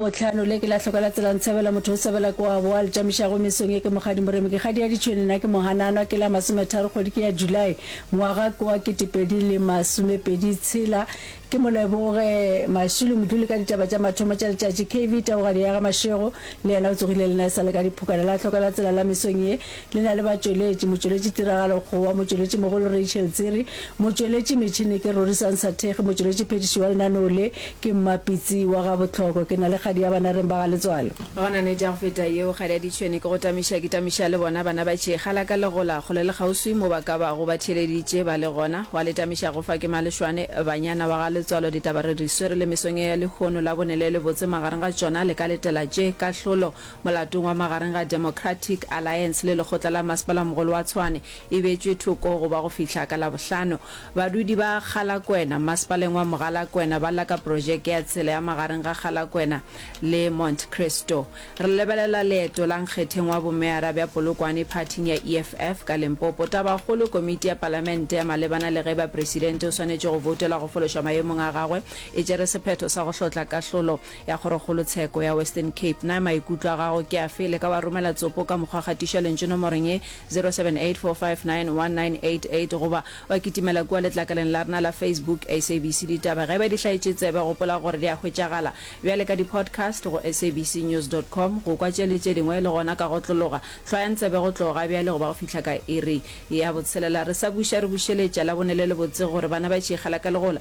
Bohlano, le ke la hloka la tsela ntshebela motho o sebela ke wa boa le tšamišago mesong ye ke Mokgadi Moremi ke kgadi ya ditšhwene na ke Mohananwa ke la masometharo kgwedi ke ya July ngwaga ke wa ketepedi le masomepedi tshela ke Moleboge Mashilo moduli ka ditaba tša mathomo tša letšatši kv taogadi ya ga Mashego le yena o tsogile le na e sa le ka diphokana la hloka la tsela la mesong ye Le na le batšweletši, motšweletši tiragalo Kgowa, motšweletši mogolo Rachel Tsiri, motšweletši metšhini ke Rorisang Sathekge, motšweletši phedišo wa lenaneo le ke Mma Pitsi wa ga Botlhoko. Ke na le kgadi ya bana reng ba ga Letswalo. Go na nete ya go feta yeo, kgadi ya ditšhwene ke go tamiša, ke tamiša le bona bana ba tšhekga la ka le gola kgole le kgauswi mo ba ka bago ba theeleditše ba le gona, wa le tamiša go fa ke Malešwane, banyana wa ga Letswalo ditaba re di swere le mesong e ya lehono la bone le le botse magareng ga tšona le ka letela tše, kahlolo. Molatong wa magareng ga Democratic Alliance le lekgotla la masepalaomogolo wa Tshwane e beetšwe thoko go ba go fihla ka Labohlano. Badudi ba Kgalakwena, masepaleng wa Mogalakwena ba lla ka projeke ya tsela ya magareng ga Kgalakwena le Mont Christo. Re lebelela leeto la nkgetheng wa bomeyara bja Polokwane phathing ya EFF ka Limpopo. Tabakgolo, komiti ya palamente ya malebana le ge bapresidente o swanetše go boutelwa go fološwa maemong a gagwe e tšere sephetho sa go hlotla kahlolo ya Kgorokgolotsheko ya Western Cape. Na maikutlo a gago ke afe? Le ka wa romela tsopo ka mokgwa gatišwa lentšu nomorong ye, 0784591988 goba wa kitimela kua letlakaleng la rena la Facebook, SABC Ditaba. Ge e ba di hlaetše tsebe, gopola gore di a hwetšagala bjale ka di-podcast go sabcnews dot com, go kwa tše le tše dingwe le gona ka go otlologa. Hlwayang tsebe go tloga bjale go ba go fihla ka iri ya botshelela. Re sa buša re bušeletša Labone le lebotse gore bana ba tšhikgela ka legola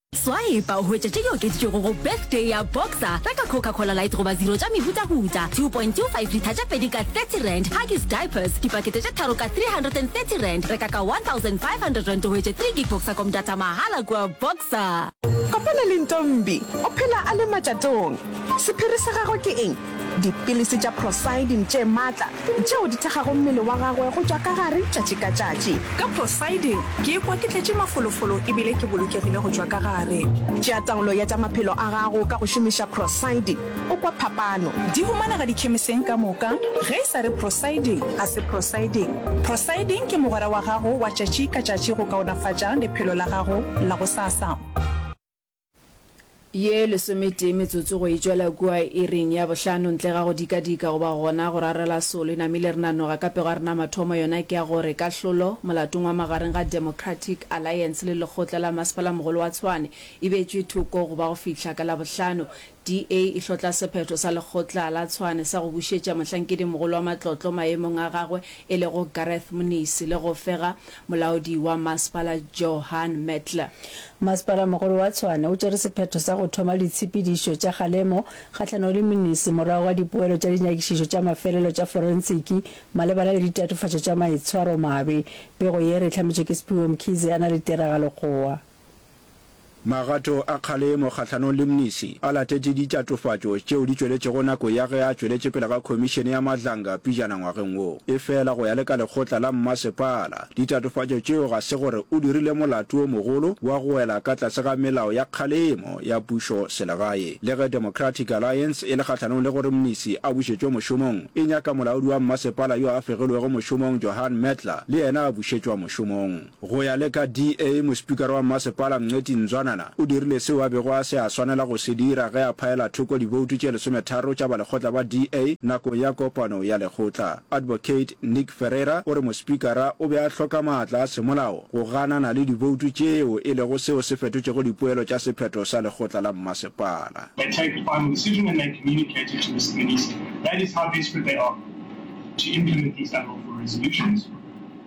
Swipe o hwetše tše di okeditšwego go Birthday ya Boxer, reka Coca Cola Light goba Zero tša mehutahuta, 2.25 litha tše pedi ka R30, Huggies Diapers, dipakete tše tharo ka R330, reka ka R1,500 o hwetše 3 gig Boxacom data mahala kua Boxer. Kopana le Ntombi, o phela a le matšatong. Sephiri sa gagwe ke eng? Dipilisi tša prosidin tše matla tšeo di thekgago mmele wa gagwe go tšwa ka gare tšatši ka tšatši. Ka prosidin ke ikwa ke tletše mafolofolo e bile ke bolokegile go tšwa ka gare. Tšea taolo ya tša maphelo a gago ka go šomiša prosidin, o kwa phapano. Di humanega dikhemiseng ka moka. Ge e sa re prosidin, ga se prosidin. Prosidin ke mogwera wa gago wa tšatši ka tšatši go kaonafatša lephelo la gago la gosasa. Ye lesometee metsotso go e tšwela kua iring ya bohlano, ntle ga go dikadika goba gona go rarela solo, e namile re nanoga ka pego a rena mathomo, yona ke ya gore kahlolo molatong wa magareng ga Democratic Alliance le lekgotla la Masepala-mogolo wa Tshwane e betšwe thoko go ba go fihla ka Labohlano. DA e hlotla sephetho sa lekgotla la Tshwane sa go bušetša mohlankedimogolo wa matlotlo maemong a gagwe e lego Gareth Mnisi le go fega molaodi wa masepala Johan Metler. Masepala-mogolo wa Tshwane o tšere sephetho sa go thoma ditshepedišo tša kgalemo kgahlanong le Mnisi morago ga dipoelo tša dinyakišišo tša mafelelo tša forensiki malebana le ditatofatšo tša maitshwaromabe. Pego ye re e hlametšwe ke Sphiwe Mkhize a na le tiragalokgowa. Magato a kgalemo kgahlanong le Mnisi a latetše ditšatofatšo tšeo di tšweletšego nako ya ge a tšweletše pele ga Khomišene ya Madlanga pijana ngwageng wo. Efela go ya le ka lekgotla la mmasepala, ditatofatšo tšeo ga se gore o dirile molato o mogolo wa go wela ka tlase ga melao ya kgalemo ya pušo selegae. Le ge Democratic Alliance e le kgahlanong le gore Mnisi a bušetšwe mošomong, e nyaka molaodi wa mmasepala yo a fegilwego mošomong Johan Mertler le yena a bušetšwa mošomong. Go ya le ka DA, mospikara wa mmasepala Mngxeti Nzwanana o dirile seo a bego a se a swanela go se dira ge a phaela thoko diboutu tše lesometharo tša balekgotla ba DA nakong ya kopano ya lekgotla. Advocate Nick Ferreira o re mospikara o be a hloka maatla a semolao go ganana le diboutu tšeo e lego seo se fetotšego dipoelo tša sephetho sa lekgotla la mmasepala. They take the final decision and they communicate it to Mr Minister. That is how desperate they are to implement these unlawful resolutions.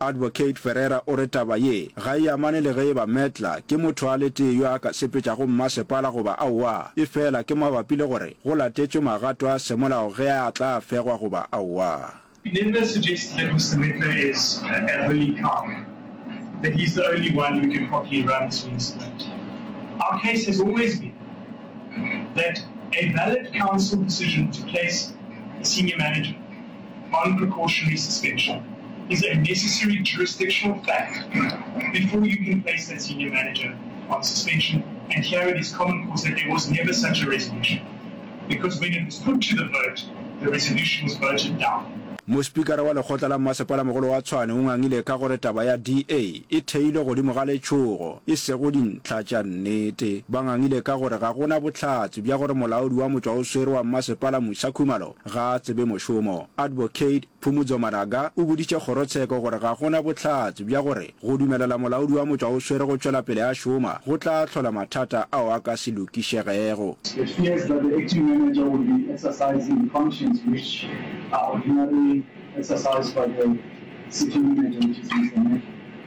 Advocate Ferreira o re taba ye ga e amane le ge e ba Medler ke motho a le tee yo a ka sepetšago mmasepala goba aowa, efela ke mabapi le gore go latetšwe magato a semolao ge a tla fegwa goba aowa. Medler suggests that Mr Medler is an elderly coward, that he is the only one who can properly run this municipality. Our case has always been that a valid council decision to place a senior manager On precautionary suspension is a necessary jurisdictional fact before you can place that senior manager on suspension and here it is common cause that there was never such a resolution because when it was put to the vote the resolution was voted down. Mospikara wa lekgotla la mmasepala-mogolo wa Tshwane o ngangile ka gore taba ya DA e theilwe godimo ga letšhogo e sego dintlha tša nnete. Ba ngangile ka gore ga go na bohlatse bja gore molaodi wa motšwaoswere wa mmasepala Musa Khumalo Ga a tsebe mošomo. Advocate Phumudzo Maraga o boditše kgorotsheko gore ga go na bohlatse bja gore go dumelela molaodi wa motšwa o swere go tšwela pele a šoma go tla hlola mathata ao a ka se lokišegego. It fears that the acting manager will be exercising functions which are ordinarily exercised by the city manager, which is Mr. Meki.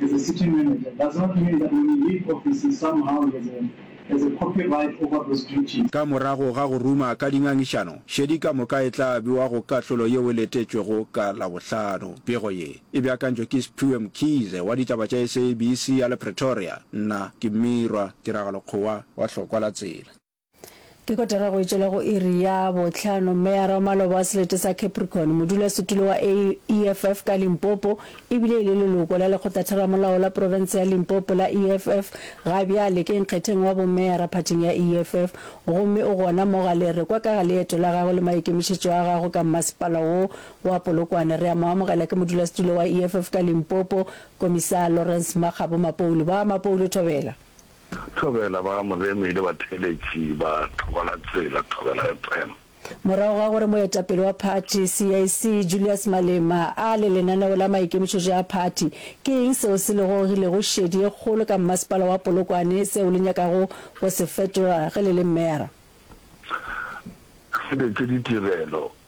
As a city manager, does not mean that when you leave office you somehow has a, has a copyright over those duties. Ka morago ga go ruma ka dingangišano, šedi ka moka e tla bewa go kahlolo yeo e letetšwego ka Labohlano. Pego ye, e beakantšwe ke Sphiwe Mkhize wa ditaba tša SABC ya le Pretoria. Nna ke Mmirwa Tiragalo Kgowa wa Hlokwa la Tsela. Ke kotara go etšwela go iri ya bohlano, Meyara wa maloba wa selete sa Capricorn, modulasetulo wa EFF ka Limpopo e bile e le leloko la lekgotlatheramolao la profense ya Limpopo la EFF, ga bjale ke nkgetheng wa bomeyara phathing ya EFF gomme o gona mo Galerekwa ka ga leeto la gagwe le maikemišetšo a gagwe ka mmasepala wo wa Polokwane. Re a mo amogela ke modulasetulo wa EFF ka Limpopo, Komisaa Lawrence Makgabo Mapoulu. Ba Mapoulu, thobela. Thobela ba Moremi le batheeletši ba Thokola-tsela, Thobela FM. Morago ga gore moetapele wa phathi, CAC, Julius Malema a le lenaneo la maikemišetšo a phathi, ke eng seo se lego le go šedi ye kgolo ka mmasepala wa Polokwane seo le nyakago go se fetola ge le le mera? Re fetše ditirelo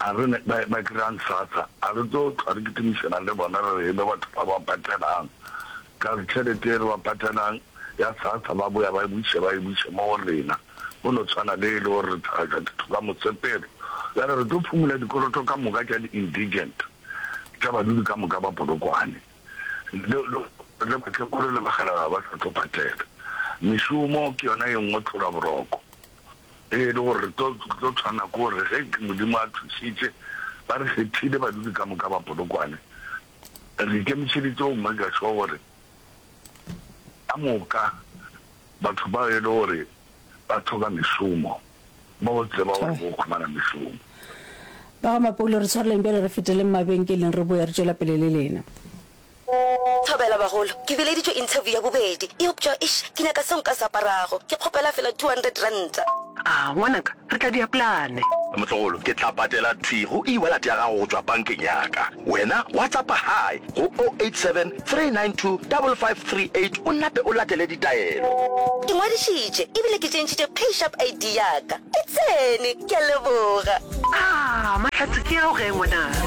A re ne ba, ba dira'ng sasa? A re tlo hlwa re kitimišana le bona re re e be batho ba ba patelang ka tšhelete e re ba patelang ya sasa, ba boya ba e buše, ba e buše mo go rena, go no tshwana le e le gore re thagatša ditho ka mosepelo. Bjale re tlo phumola dikoloto ka moka tša di-indigent, tša badudi ka moka ba Polokwane, le, le, le batlekolo le bakgalabje ba sa tlo patela. Mešomo ke yona e nngwe tlhola boroko. Ee, e le gore re tlo tlo tshwana ke gore ge Modimo a thušitše, ba re kgethile badudi ka moka ba Polokwane, re ikemišeditše go maker sure gore ka moka batho bao e le gore ba thoka mešomo ba go tseba gore bo khumana mešomo. Ba ga Mapoulo re tshwareleng bjale re feteleng mabenkeleng re boya re tšwela pele le lena. Thobela bagolo, ke bileditšwe interview ya bobedi, eupša eish ke nyaka seo nka se aparago, ke kgopela fela two hundred ranta. A ngwanaka, re tla dia plane. Motlogolo, ke tla patela thwi go e-wallet ya gago go tšwa bankeng ya ka. Wena WhatsAppa Hi go o eight seven three nine two double five three eight o nape o latele ditaelo. Ke ngwadišitše ebile ke tšentšhitše PayShap ID ya ka. E tsene! Ke a leboga. Aah mahlatse ke ao ge ngwanaka.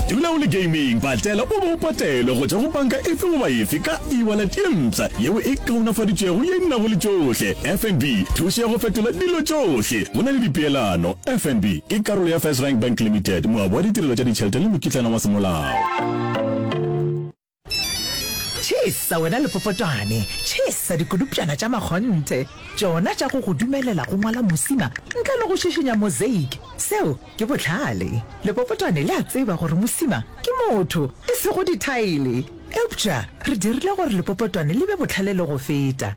Dula o le gaming, patlela o be o patelwe go tšwa go banka efe goba efe ka e-wallet ye mpsha yeo e kaonafaditšwego ye e nago le tšohle. FNB, thušo ya go fetola dilo tšohle go na le dipeelano. FNB ke karolo ya FirstRand Bank Limited, moabi wa ditirelo tša ditšhelete le mokitlana wa semolao. Tšhesa wena lepopotwane, tšhesa dikulupšana tša makgonthe, tšona tša go go dumelela go ngwala mosima ntle le go šišinya mosaic. Seo ke bohlale. Lepopotwane le a tseba gore mosima ke motho, e sego dithaele. Eupša re dirile gore lepopotwane le be bohlale le go feta.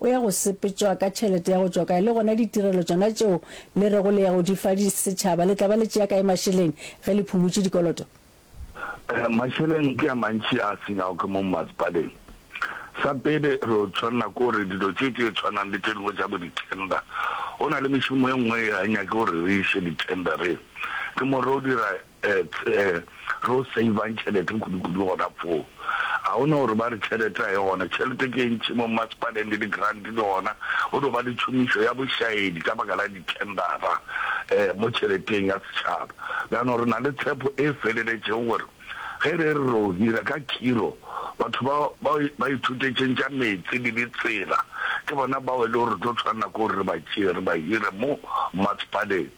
O ya go sepetšwa ka tšhelete ya go tšwa kae? Le gona ditirelo tšona tšeo le rego le ya go di fa setšhaba, le tla ba le tšea kae mašeleng ge le phumutše dikoloto? Mašeleng ke a mantši a senyago ke mo mmasepaleng. Sa pele, re tšwanela ke gore dilo tše tše tshwanang le tše dingwe tša bo ditender, go na le mešomo e nngwe e ga e nyake gore re iše ditendereng. Ke mo re o dira Ets a re o savang tšhelete kudukudu gona foo. Ga go na gore ba re tšhelete ga e gona. Tšhelete ke e ntši mo mmasepaleng le di-grant le gona go no ba le tšhomišo ya bošaedi ka baka la di-tendera mo tšheleteng ya setšhaba. Bjano re na le tshepo e feleletšego gore ge re re ro hira ka khiro batho ba ba ithutetšeng tša meetse le ditsela ke bona bao e le gore re tlo tshwanela ke gore re ba tšee re ba hire mo mmasepaleng.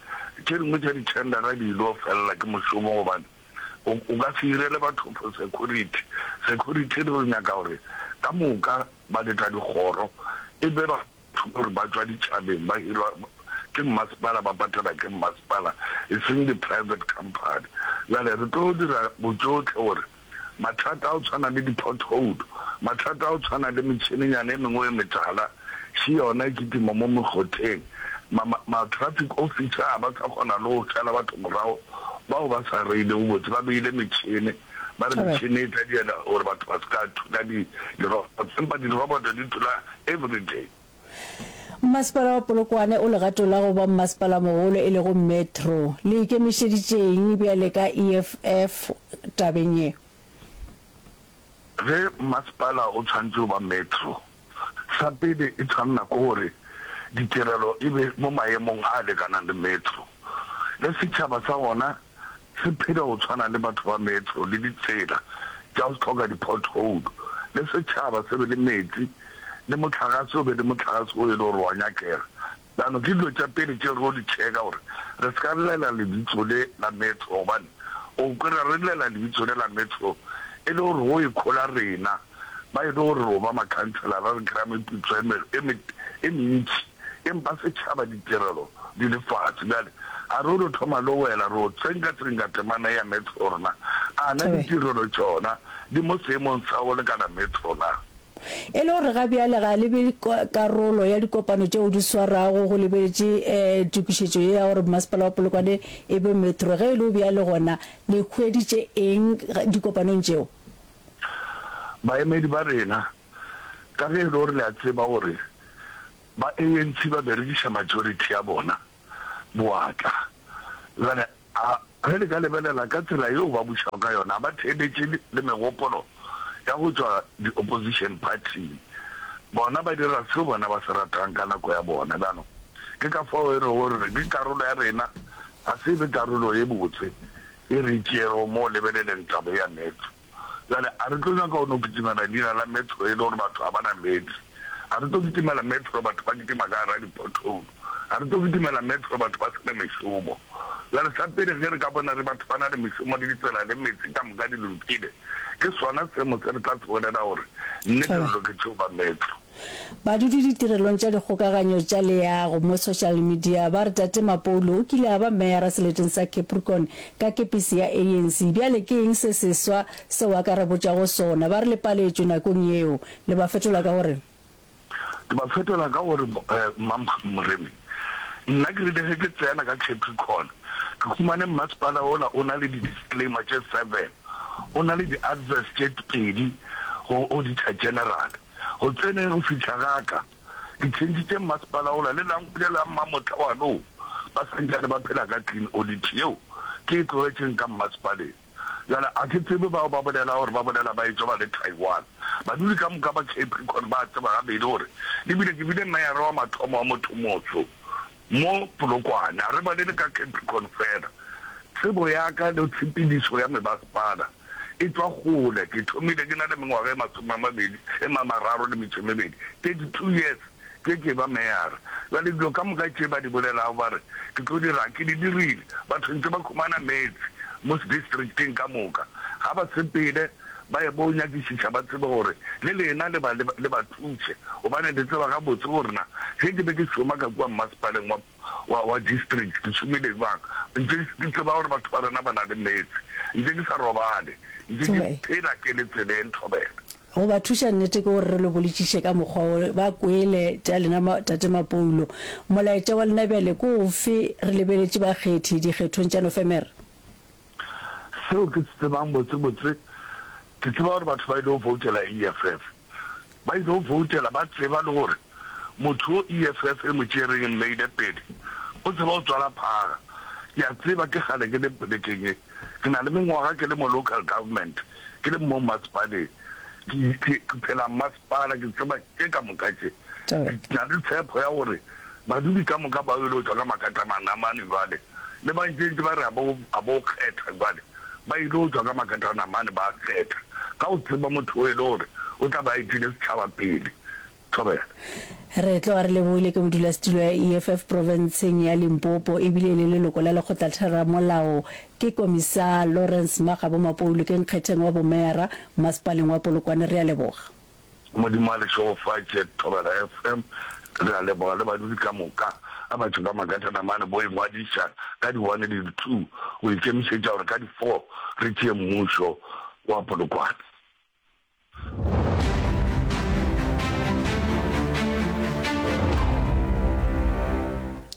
Tše dingwe tša dithendara di il'o felela ke mošomo gobane o o ka se irele batho for security. Security re nyaka gore ka moka ba leta dikgoro e be ba batho gore ba tšwa ditšhabeng ba hirwa ke mmasepala ba patela ke mmasepala e seng di-private company. Bjale re tlo dira botšohle gore mathata a go tshwana le dipothoulo, mathata a go tshwana le metšhinenyana e mengwe e metala še yona e kitima mo mekgotheng, ma, ma, ma-traffic officer ga ba sa kgona le go šala batho morago bao ba sa reilego botse, ba beile metšhini, ba re metšhini e tla diela gore batho ba se ka thula di, di-robots, empa di-robot di thula everyday. Mmasepala wa Polokwane o legatong la go ba mmasepala-mogolo e lego metro. Le ikemišeditše'ng bjale ka EFF tabeng ye? Ge mmasepala o tshwanetše go ba metro, sa pele e tshwanela ke gore ditirelo e be mo maemong a lekanang le metro le setšhaba sa wona se phela go tshwana le batho ba metro le ditsela tša go hloka di-pothole, le setšhaba se be le meetse, le mohlagase o be le mohlagase wo e le gore wa nyakega. Bjano ke dilo tša pele tše re yo di tšheka gore re se ka llela lebitso le la metro gobane o kwera re llela lebitso le la metro e le gore go ikhola rena ba e le gore ro ba makhanselara re kry-a meputso e mentši. Empa setšhaba ditirelo di le fase. Bjale, a re o no thoma lowela, re o tsenkatsengka temana ea Metro rna. A na ditirelo tšona di mo seemong sa go lekana Metro na? E le gore ga bjale ga le be karolo ya dikopano tšeo di swarago, go lebeletše tokišetšo ye ya gore Bomasepala wa Polokwane e be Metro. Ge e le bjalo, gona le hweditše eng dikopanong tšeo? Baemedi ba rena ka ge e le gore le a tseba gore ba ANC ba berekiša majority ya bona boatla. Bjale a ge le ka lebelela ka tsela yeo ba bušago ka yona, a ba theeletše le megopolo ya go tšwa di-opposition party-ing. Bona ba dira seo bona ba se ratang ka nako ya bona. Bjanong ke ka fao e rego re re ke karolo ya rena, ga se e be karolo e botse e re e tšeego mo o lebeleleng taba e ya Mets. Bjale, a re tlo nyaka go no kitimela leina la Metro e le gore batho ga ba na meetse. A re tlo kitimela Metro batho ba kitima ka gara di-pothole. A re tlo kitimela Metro batho ba se na mešomo. Bjale, sa pele ge re ka bona re batho ba na le mešomo le ditsela le meetse ka moka di lokile, ke sona semo se re tla se bolela gore nnete re loketše go ba Metro. Badudi ditirelong tša dikgokaganyo tša leago mo social media ba re Tate Mapoulu o kile a ba meyara seleteng sa Capricorn ka kepisi ya ANC. Bjale ke eng se seswa seo a ka re botšago sona? Ba re le paletšwe nakong yeo. Le ba fetola ka go re? Ke ba fetola ka go re, Mmampha Moremi, nna ke rile ge ke tsena ka Capricorn ke humane mmasepala ola o na le di-disclaimer tše seven, o na le di-adverse tše pedi go auditor general. Go tseneng go fihla ga ka, ke tšhentšhitše mmasepala ola le Langwele la Mmamotla wa nou ba sa ntšane ba phela ka clean audit yeo ke e tlogetšeng ka mmasepaleng. Bjale a ke tsebe bao ba bolelago gore ba bolela ba etšwa ba le Taiwan. Badudi ka moka ba Capricon ba a tseba gabedi gore e bile ke bile meyara wa mathomo wa motho-motsho. Mo Polokwane, re balele ka Capricorn fela. Tsebo ya ka le tshepedišo ya mebasepala e tšwa kgole. Ke thomile ke na le mengwaga e masome a mabedi e mamararo le metšo e mebedi, 32 years, ke ke ba meyara. Bjale dilo ka moka tše ba di bolelago ba re ke tlo di raga ke di dirile. Batho ntše ba humana meetse mo sedistricteng ka moka, ga ba sepele. ba ye bo nyakišiša ba tsebe gore le lena le ba le ba thuše gobane le tseba gabotse gore na ge ke be ke šoma ka kua mmasepaleng wa wa wa district ke šomile jwang ntše ke tseba gore batho ba rena ba na le meetse ntše ke sa robale ntše ke phela ke le tseleng thobela go ba thuša nnete ke gore re lo bolitšiše ka mokgwa wo ba kwele tša lena ma, tate Mapoulo molaetša wa lena bjale ko ofe re lebeletše bakgethi dikgethong tša Nofemere Seo ke se tsebang botsebotse, ke tseba gore batho ba ile go voutela EFF, ba ile go voutela ba tseba le gore motho yo EFF e mo tšereng e mmeile pele o tseba go tswala phaga. Ke a tseba ke kgale ke le polekeng ye, ke na le mengwaga ke le mo local government, ke le mmo mmasepaleng, ke phela mma. Bana, ke tseba tše ka moka tše. Ke na le tshepho ya gore badudi ka moka ba yolo tšwa ka makata manamane bjale, le ba ntšentše ba re a bo, a bo kgetha bjale. Ba yilo tšwa ka makata anamane ba kgetha, ka go tseba motho wo e le gore o tla be a etile setšhaba pele. Thobela. Re tloga re lebohile ke modulasetulo ya EFF profenseng ya Limpopo e bile e le leloko la Lekgotlatheramolao, ke Komisar Lawrence Magabo Mapoulu ke nkgetheng wa bomeyara Masepaleng wa Polokwane re a leboga. Modimo a le šegofatše Thobela FM. Re a leboga le badudi ka moka. A batho ba Magatana mane bo ingwadiša ka di one le di two go ikemišetša gore ka di four re tšee mmušo wa Polokwane.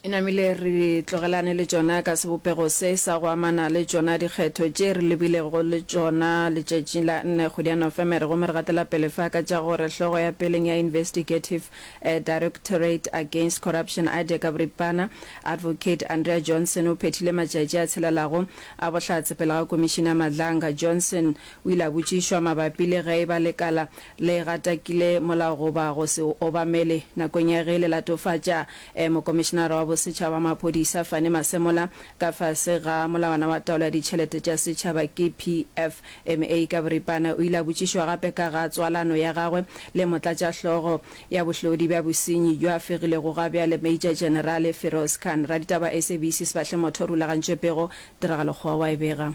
E namile re tlogelane le tšona ka sebopego se sa go amana le tšona dikgetho tše re lebilego le tšona letšatšing la nne kgwedi ya Nofemere gomme re gatela pele fa ka tša gore hlogo ya peleng ya Investigative Directorate Against Corruption Aide ka boripana Advocate Andrea Johnson o phethile matšatši a tshelelago a bohlatse pele ga Commissioner Madlanga. Johnson o ile a botšišwa mabapi le ge e ba lekala le gatakile molao goba go se o obamele nakong ya ge le latofatša e Mokomišinara wa Bosetšhaba wa Maphodisa Fannie Masemola ka fase ga Molawana wa Taolo ya Ditšhelete tša Setšhaba ke PFMA ka boripana o ile a botšišwa gape ka ga tswalano ya gagwe le Motlatšahlogo ya Bohlodi bja Bosenyi bjo a fegilego gabjale Major Generale Feroz Khan Raditaba SABC Sefahlemothorulagantšwepego Tiragalo Kgowa wa e bega.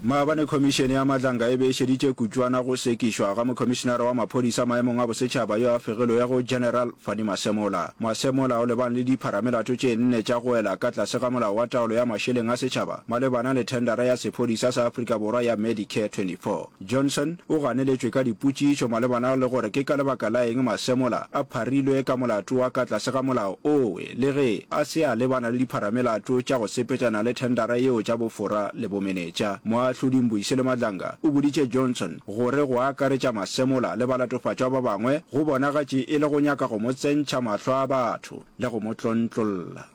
Maabane Khomišene ya Madlanka e be e šeditše kutšwana go sekišwa ga Mokhomišenara wa Maphodisa Maemong a Bosetšhaba yo a fegilwego General Fannie Masemola. Masemola o lebane le dipharamelato tše nne tša go wela ka tlase ga Molao wa Taolo ya Mašeleng a Setšhaba malebana le thendara ya sephodisa sa Afrika Borwa ya Medicare 24. Johnson o ganeletšwe ka dipotšišo malebana le gore ke ka lebaka la eng masemola a pharilwe ka molato wa ka tlase ga molao owe le ge a se a lebana le dipharamelato tša go sepetšana le thendara yeo tša bofora le bomenetša. Moahlodi Mbuyisile Madlanga o boditše Johnson gore go akaretša masemola le balatofatšwa ba bangwe go bonagatše e le go nyaka go mo tsentšha mahlo a batho le go mo tlontlolla.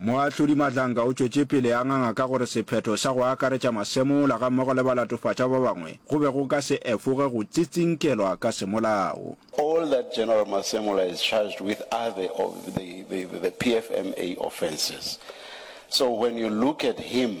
Moahlodi Madlanka o tšwetše pele a nganga ka gore sephetho sa go akaretša masemola gammogo le balatofatšwa ba bangwe go be go ka se efoge go tsitsinkelwa ka semolao. All that General Masemola is charged with are the of the the the PFMA offences so when you look at him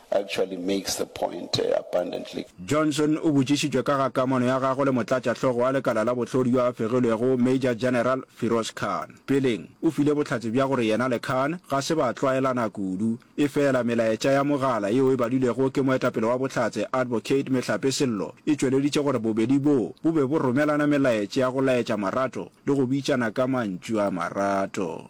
actually makes the point abundantly. Johnson o botšišitšwe ka ga kamano ya gagwe le motlatšahlogo wa lekala la bohlodi yo a fegilwego Major General Firoz Khan. Peleng, o file bohlatse bja gore yena le Khan ga se ba tlwaelana kudu. Efela melaetša ya mogala yeo e badilwego ke moetapele wa Bohlatse Advocate Mehlape Sello e tšweleditše gore bobedi boo bo be bo romelana melaetša ya go laetša marato le go bitšana ka mantšu a marato.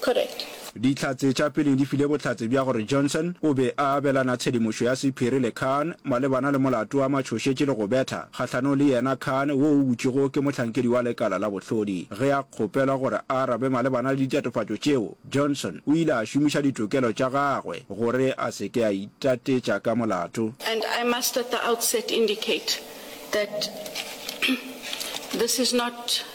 Correct. Dihlatse tša pele di file bohlatse bja gore Johnson o be a abelana tshedimošo ya sephiri le Khan malebana le molato wa matšhošetši le go betha kgahlanong le yena Khan wo o butšwego ke mohlankedi wa lekala la bohlodi. Ge a kgopelwa gore a arabe malebana le ditatofatšo tšeo, Johnson o ile a šomiša ditokelo tša gagwe gore a se ke a itatetša ka molato. And I must at the outset indicate that this is not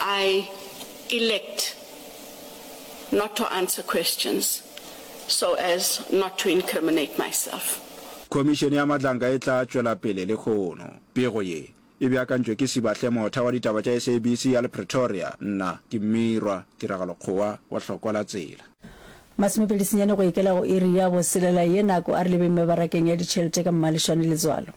I elect not to answer questions so as not to incriminate myself. Khomišene ya Madlanka e tla tšwela pele lehono. Pego ye e beakantšwe ke Sibahle Motha wa ditaba tša SABC ya le Pretoria. Nna ke Mmirwa Tiragalo Kgowa wa Hlokwa la Tsela. Masome pedi senyane go ikela go iri ya boselela ye nako a re lebeng mebarakeng ya ditšhelete ka mmalešwane letswalo.